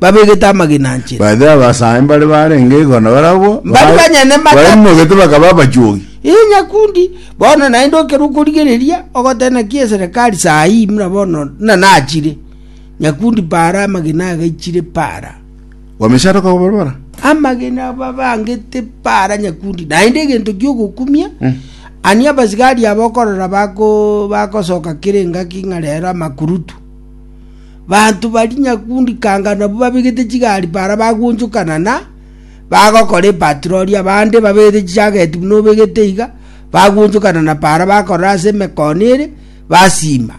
babegete amagena anchete Baadhi ya Abasae mbare barenge igoro barabwo Bari banyene matatu. baimogete bakaba abachuogi. Ee nyakundi bono naende okerwa okorigereria ogotee naki eserekari saa hii muna bono na nachire nyakundi para amagena agaichire para Wamechara kwa barabara. amagena babangete para nyakundi naende egento giogokumia Mm. ani abasigari abo okorora bako bakosoka kere engaki ng'a rero amakurutu Banto baria nyakundi kanga nabwo babegete chigari para bagonchokana na bagokora epatirori, abande babegete chichageti buna obegete iga, bagonchokana na para bakorora ase emekono ere, basima.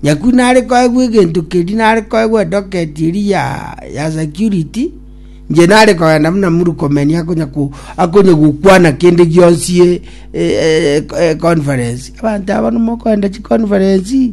Nyakundi nare koegwa egento keria, nare koegwa edoketi eria ya, ya security, inche nare kogenda buna Murkomen akonya ko, akonya gokwana kende gionsi e- e- e- e- conference. Abanto aba nabwo mokoenda chiconference.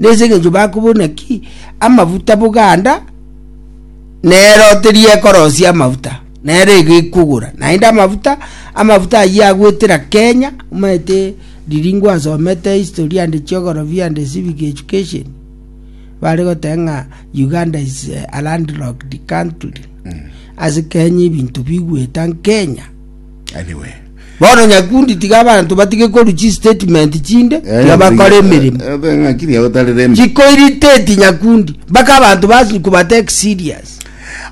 Nese engencho bakobuna ki amafuta boganda nero teriekorosia amafuta nero egekogora naende amafuta amafuta ayio agwetera Kenya omanyete riringo asomete history and geography and civic education bare goteba ng'a Uganda is a land locked country ase Kenya ebinto bigweta Kenya. Anyway. Bono nyakundi tiga abanto batige korwa chistatement chinde Eh, tiga bakora eh, emeremo eh, eh, ng'aki ria gotari rembe. chikoiriteti nyakundi mpaka abanto basi kubatake serious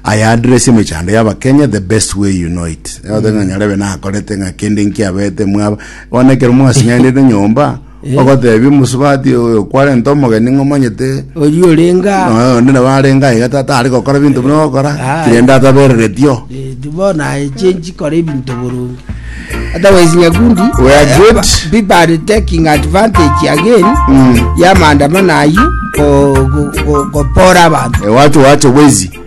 aya address emechando y'abakenya the best way you know it othe ng'a nyarebe nakorete ng'a kende nkiabete mwaba bonekero mwasinyandete nyomba Ogoteebia omosubati oyo kwarenta omogeni ng'a omanyete oria orenge aa nonya onde nabo arenge aiga ta- tari gokora binto buna ogokora Aye. kirende atabereretio Eh, bono aye chenchi kora ebinto boronge otherwise nyakundi We are eh, good. ba- people are taking advantage again Mm. ya maandamano ayio go- go- go- gopora abantu Eh, wacho wacho bwezi